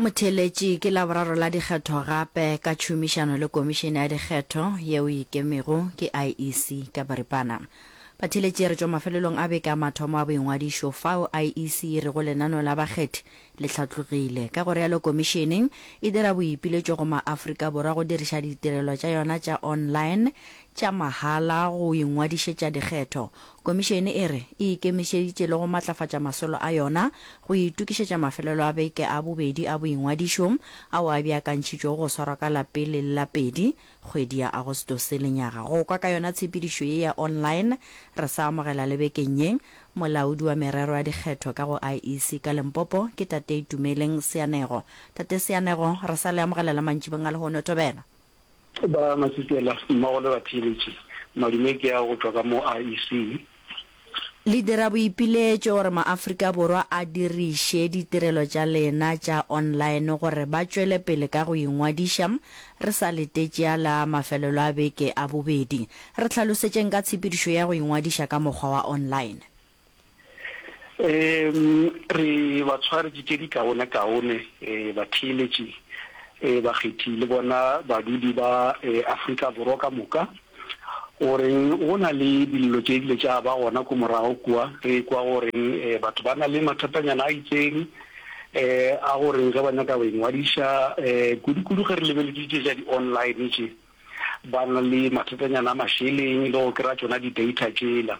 Motheeletši ke Laboraro la Dikgetho gape ka tšhomišano le Komišene ya Dikgetho yeo e ikemego ke IEC ka boripana. Batheeletši re tšwa mafelelong a beke a mathomo a boingwadišo fao IEC e rego lenaneo la bakgethi le hlatlogile. Ka go realo Komišene e dira boipiletšo go ma-Afrika Borwa go diriša ditirelo tša yona tša online tša mahala go ingwadišetša dikgetho. Komišene e re e ikemišeditše le go matlafatša masolo a yona go itokišetša mafelelo a beke a bobedi a boingwadišo ao a beakantšhitšwego go swarwa ka la pele le la pedi kgwedi ya Agostose lenyaga. Go kwa ka yona tshepedišo ye ya online re sa amogela le bekeng ye, molaodi wa merero ya dikgetho ka go IEC ka Limpopo ke Tate Itumeleng Seanego. Tate Seanego, re sa le amogela le mantšibeng a lehono. Thobela. Ba Matsipela mmogo le batheeletši, madume ke a go tšwa ka mo IEC. Le dira boipiletšo gore maAfrika Borwa a diriše ditirelo tša lena tša online gore ba tšwele pele ka go ingwadiša re sa letetše a la mafelelo a beke a bobedi. Re hlalosetšeng ka tshepedišo ya go ingwadiša ka mokgwa wa online. Um re batshwari di tše dikaonekaone, um batheeletši, um bakgethi le bona badudi ba um Afrika Borwa ka moka. O reng go na le dillo tše dile tša ba gona ko morago kua, re ekwa go reng um batho ba na le mathatanyana a itseng, um a go reng ge ba nyaka go ingwadiša, um kudukudu ge re lebeletše tše tša di-online tše, ba na le mathatanyana a mašeleng le go kry-a tšona di-data tšela.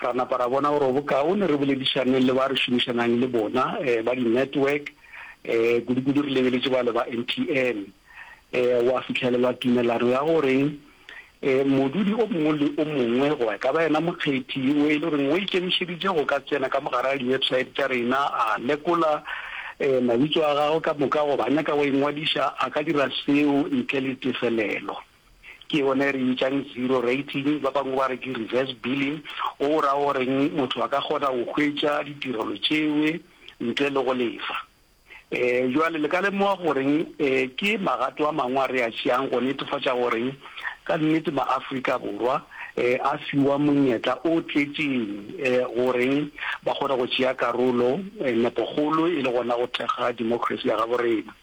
Ra napa ra bona gore go bokaone re boledišaneng le ba re šomišanang le bona ba di-network, kudukudu re lebeletše bale ba MTN. Gwa fihlelelwa tumelano ya gore modudi o mongwe le o mongwe goba e ka ba yena mokgethi yo e le goreng o ikemišeditše go ka tsena ka mogare ga di-website tša rena a lekola mabitso a gagwe ka moka goba a nyaka go ingwadiša, a ka dira seo ntle le tefelelo. Ke yone e re bitšang zero rating, ba bangwe ba re ke reverse billing, go o raya goreng motho a ka kgona go hwetša ditirelo tšeo ntle le go lefa. Um bjale le ka lemoga gore um ke magato a mangwe a re a tšeang go netefatša gore ka nnete maAfrika Borwa um a fiwa monyetla o tletšeng um gore ba kgone go tšea karolo um nepogolo e le gona go thekga democracy ya gabo rena.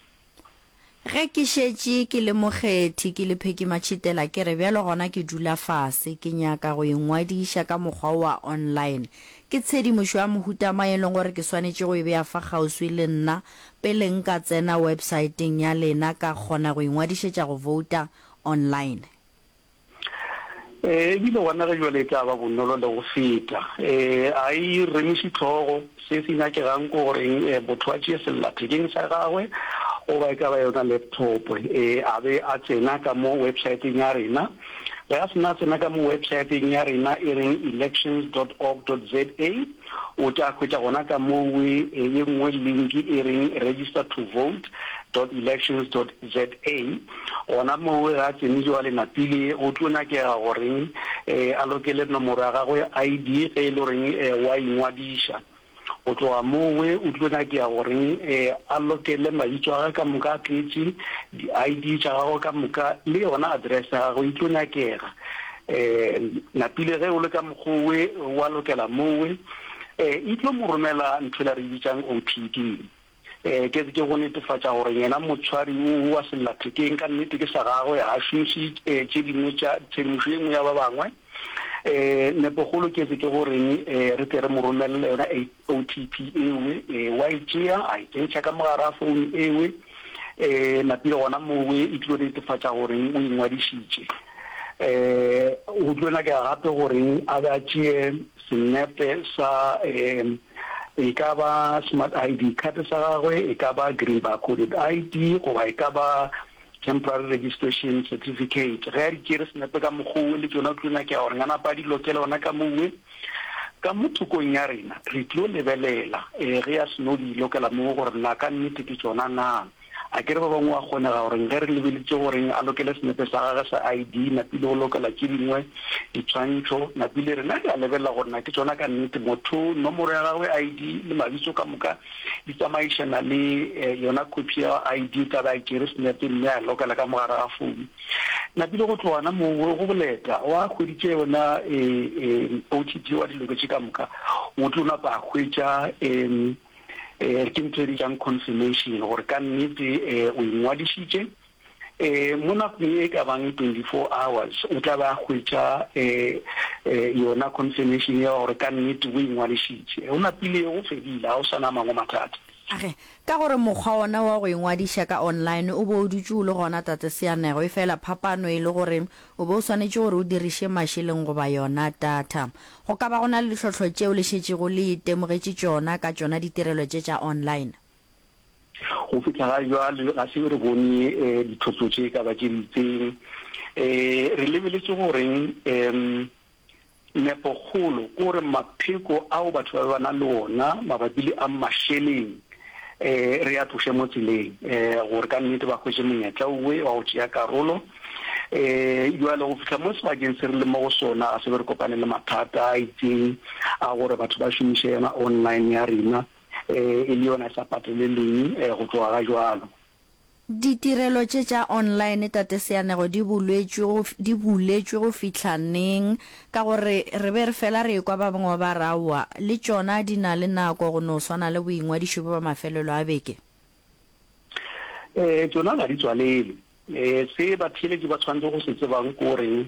Ge ke šetše ke le mokgethi, ke le Phekimatšhitela, ke re bjalo gona ke dula fase, ke nyaka go ingwadiša ka mokgwa wo wa online. Ke tshedimošo ya mohuta mang e leng gore ke swanetše go e bea fa kgauswi le nna pele nka tsena websaeteng ya lena ka kgona go ingwadišetša go vouta online? Ee, e bile gona ge bjale e tla ba bonolo le go feta. Ee, a e remiše tlhogo. Se se nyakegang ke goreng ee, motho a tšee sellathekeng sa gagwe goba e ka ba yona laptop ee, a be a tsena ka mo websaeteng ya rena. Ge a se na a tsena ka mo websaeteng ya rena e reng elections dot org dot za, O tla hwetša gona ka moo ye nngwe linki e reng Register to Vote dot Elections dot ZA. Gona moo ge a tsene joale Napile go tlo nyakega gore a lokele nomoro ya gagwe ya ID ge e le gore o a ingwadiša. Go tloga moo o tlo nyakega gore a lokele mabitso a gagwe ka moka a tletše, di-ID tša gagwe ka moka le yona address ya gagwe e tlo nyakega. E, napile ge o le ka mokgowe, wa lokela mowe. E, e tlo mo romela nthwela re bitsang OPD. E, ke ke go netefatša gore yena motshwari o wa sellathekeng ka nnete ke sa gagwe, ga šomiše e, tše dingwe tša tshedimošo e nngwe ya ba bangwe. E, nepogolo ke ke go reng e, re tle re mo romelele yona OTP ewe, e wa e tšea a e kentšha ka mogara phone ewe, e napile gona moo e tlo netefatša gore o ingwadišitše. E go tlo nyakega gape gore a be a tšee senepe sa e e ka ba smart ID card sa gagwe, e ka ba green bar coded ID goba e ka ba temporary registration certificate ge a di tšere senepe ka mokgowe le tšona o tlo nyakega gore nga napa a di lokele ona ka mowe ka mo thokong ya rena re tlo lebelela um ge ya seno di lokela moo gore na ka nnete ke tsona na a kere ba bangwe wa kgonega gore ge re lebeletse goreng a lokele senepe sa gage sa i d napile go lokela ke dingwe ditshwantšho napile rena re a lebelela gore na ke tsona ka nnete motho nomoro ya gagwe i d le mabitso ka moka Di tsamaišana le yona khophi ya ID ka ba e tšere senepe mme a e lokela ka mogare ga founu. Napile go tloga gona moo go boleta, o a hweditše yona OTT o a di loketše ka moka. O tlo napa a hwetša ke ntho e bitswang confirmation gore ka nnete o ingwadišitše. um mo nakong e ka bang twenty-four hours o tla be a hwetša um yona confirmation ya gore ka nnete o ingwadišitše o napile o fedile ga o sa na mangwe mathata Age, ka gore mokgwa ona wa go ingwadiša ka online o be o dutše o le gona Tate Seanego, efela phapano e le gore o be o swanetše gore o diriše mašeleng goba yona data. Go ka ba go na le ditlhohlo tšeo le šetšego le itemogetše tšona ka tšona ditirelo tše tša online? Go fihla ga jwale ga se re bone dithoto tše ka ba tše di itseng. Re lebeletše goreng? um Nepokgolo ke gore mapheko ao batho ba be ba na le ona mabapi le a mašeleng um re a tloše mo tseleng um gore ka nnete ba hwetše monyetla owe wa go tšea karolo. Um jwale go fihla mo sebakeng se re le mo go sona ga se be re kopane le mathata a itseng a gore batho ba šomiše yona online ya rena. e le yona e sa patelelweng go tloga ga jwalo. Ditirelo tše tša online, Tate Seanego, di bulwetšwe go, di buletšwe go fihla neng? Ka gore re be re fela re ekwa ba bangwe ba re aowa, le tšona di na le nako go no swana le boingwadišo bjo ba mafelelo a beke. Ee, tšona ga di tswalelwe. Se batheeletši ba tshwanetse go se tsebang ke gore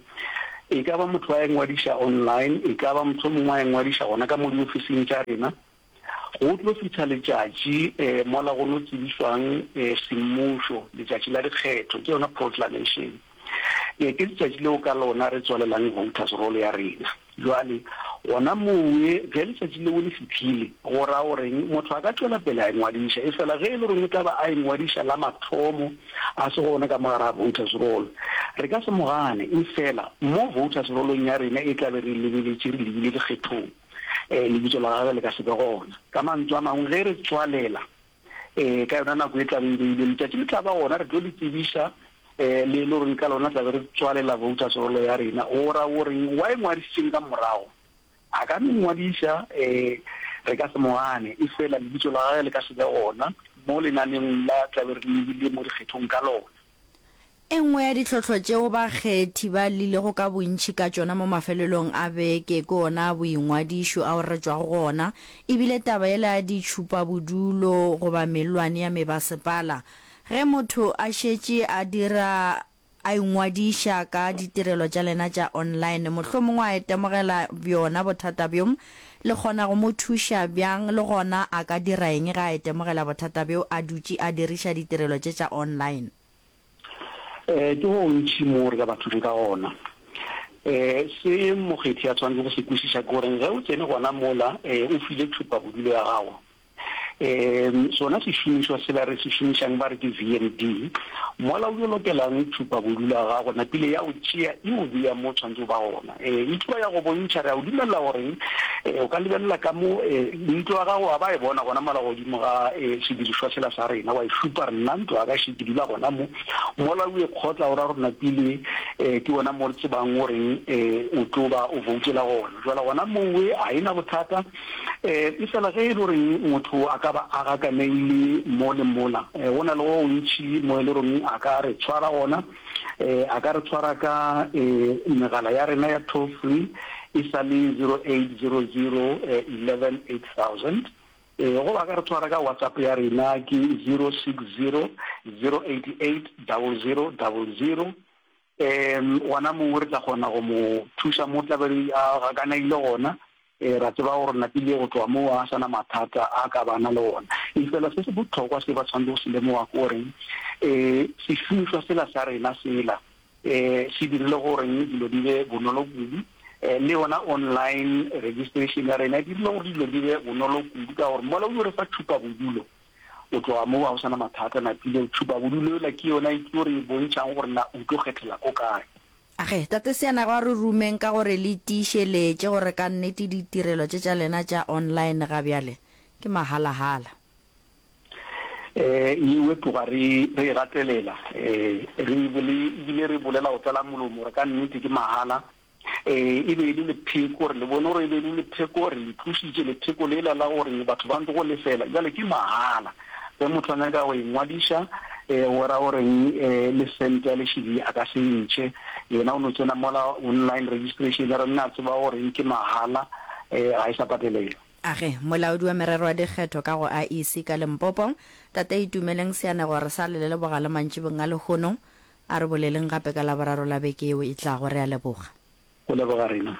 e ka ba motho a ingwadiša online, e ka ba mohlomongwe a ingwadiša gona ka mo diofising tša rena, Go tlo fihla letšatši mola go no tsebišwang semmušo, letšatši la dikgetho, ke yona proclamation. Ke letšatši leo ka lona re tswalelang voters roll ya rena. Jwale gona mowe ge letšatši leo le fihlile, go ra goreng? Motho a ka tšwela pele a engwadiša, efela ge e le goreng o tla ba a engwadiša la mathomo, a se gona ka mo gare ga voters roll, re ka se mo gane, efela mo voters roll-ong ya rena e tla be re e lebeletše re lebile dikgethong. ee, lebitso la gagwe le ka se be gona. Ka mantšu a mangwe, ge re tswalela ee ka yona nako e tla be e beilwe, letšatši le tla ba gona, re tlo le tsebiša ee, le e le gore ka lona tla be re tswalela voters roll ya rena. O ra o reng? Wa e ngwadišitšeng ka morago? A ka no e ngwadiša, ee, re ka se mo gane, efela lebitso la gagwe le ka se be gona mo lenaneng la tla be re lebile mo dikgethong ka lona. E nngwe ya ditlhohlo tšeo bakgethi ba llilego ka bontši ka tšona mo mafelelong a beke ke ona a boingwadišo ao re tšwago go ona, e bile taba yela ya ditšhupabodulo goba mellwane ya mebasepala. Ge motho a šetše a dira a ingwadiša ka ditirelo tša lena tša online, mohlomongwe a itemogela bjona bothata bjo, Le kgona go mo thuša bjang, le gona a ka dira eng ge a itemogela bothata bjo a dutše a diriša ditirelo tše tša online? Ee, ke go gontši moo re ka ba thušo ka gona. Se mokgethi a swanetše go se kwešiša ke gore ge o tsene gona mola, o file thupabodulo ya gago um sona sešomišwa sela re se šomišang ba re ke VMD. Mola o yo lokelang tšhupabodu la gago napile ya o tšea e o bea mo o tshwanetse o ba gona. Um e tlo ya go bontšha re a o dumelela gore um o ka lebelela ka mo um ntlo ya gago wa ba e bona gona mola godimo ga um sedirišwa sela sa rena wa e šupa re nna ntlo ya ka še ke dula gona mo. Mola o e kgotla o ra gore napile um ke gona mo re tsebang goreng um o tlo ba o voutela gona. Jwale gona mowe ga e na bothata. E, efela ge e le goreng motho a ka ba a gakaneile mo le mola, e, go na le go gontši mo e le goreng a ka re tshwara gona. E, a ka re tshwara ka e, megala ya rena ya toll free e sa le 0800 e, 11 8000. E, goba a ka re tshwara ka WhatsApp ya rena ke 060 088 0000. Ee, gona mongwe re tla kgona go mo thuša mo tla be a gakanaile gona. Ee, ra tseba gore napile go tloga moo a sana mathata a ka bana le ona. Efela se se bohlokwa se ba tshwanetse go se lemoga ke goreng ee, sešomišwa sela sa rena sela ee, se dirile gore dilo di be bonolo kudu. Ee, le yona online registration ya rena e dirile gore dilo di be bonolo kudu ka gore mola o yo re fa thupabodulo. O tloga moo ga go sa na mathata, na tlile tšhupa bodulo yola ke yona e tlo re bontšhang gore na o tlo kgethela ko kae. Age, Tate Seanago a re rumeng ka gore le tiišeletše gore ka nnete ditirelo tše tša lena tša online ga bjale ke mahala-hala. Ee, yeo e tloga re e gatelela. Ee, re e bile re e bolela go tlala molomo gore ka nnete ke mahala. Ee, e be e le lepheko gore le bone, gore e be e le lepheko gore le tlositše lepheko lela la gore batho ba ntlo go lefela. Jale ke mahala, ge motho a nyaka go engwadiša um o ra goreng um le sente ya lešidi a ka se ntšhe, yena o no tsena mola online registration ya rena, a tseba goreng ke mahala, um ga e sa patelelwa. A re molaodi wa merero ya dikgetho ka go IEC ka Limpopo, Tate Itumeleng Seanegore Salele le bogalemantšibong a lehono, A re boleleng gape ka Laboraro la beke yeo e tlago. Re a leboga. Go leboga rena.